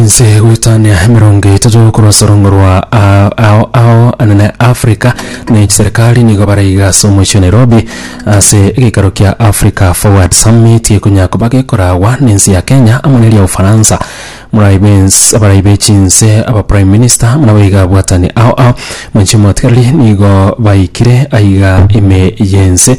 Inse goetania emerongo etato korwa sorongo rwa a- ao ao anene Africa ne chiserikali nigo baraiga ase omochie o Nairobi ase egeikaro kia Africa Forward Summit ekonya koba gekorawa nense ya Kenya amo neria Ufaransa. Morai bens- abarai be chinse aba Prime Minister buna boiga abwatani ao ao manche omotigareri nigo baikire aiga ime yense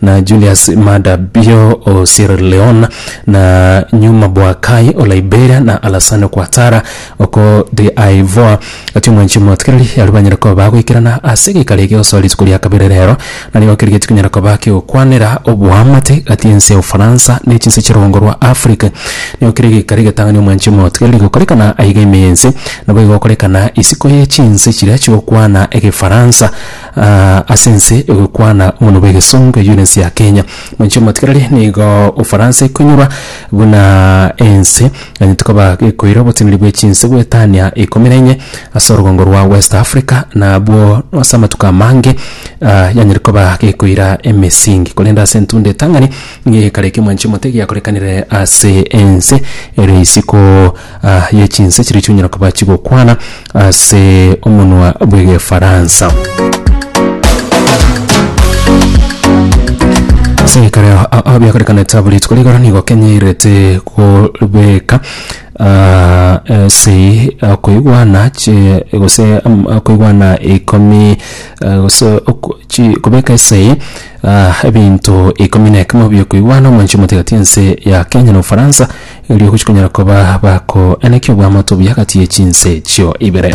na Julius Maada Bio o Sierra Leone, na Nyuma Boakai o Liberia, na Alassane Ouattara oko D'Ivoire. Gati omwanchi omotikereri aria banyare koba bagoikerana ase egeikaro eke gosoa rituko ria kabere rero, na nigo keria tikonyara koba kegokwanera oboamate gati ense ya Ufaransa ne chinse chia rugongo rwa Africa. Nigo keria egeikaro egetang'ani omwanchi omotikereri gokorekana aiga ime y'ense, naboigo gokorekana isiko ye chinse chiria chigokwana Egefaransa. Ase ense egokwana omonwa bw'egesongo eyio nense ya Kenya. Mwanchi omotigareri nigo Ufaransa ekonyorwa buna ense eganyete koba gekoira oboteneri bwe chinse bw'etania ikomi na inye ase orogongo rwa West Africa na abwo ase amatuko amange yanyare koba gekoira emesingi korende ase entunda etang'ani nigo egekareka mwanchi omotebi akorekanire ase ense ere isiko. a ye chinse chiria chionyara koba chigokwana ase omonwa bw'Egefaransa. Ase ekero a- a- biakorekanete abwo rituko rigoro nigo Kenya erete kobeka ah, ase ah, koigwana chi- gose am- ah, koigwana ikomi ah, gose oko- chi- kobeka ase ah, ebinto ikomi na ekemo biokoigwana omoanchwa omotigati ense ya Kenya na Ofaransa erio gochia konyara koba bakoeneki obwamato buya agati ye chinse echio ibere.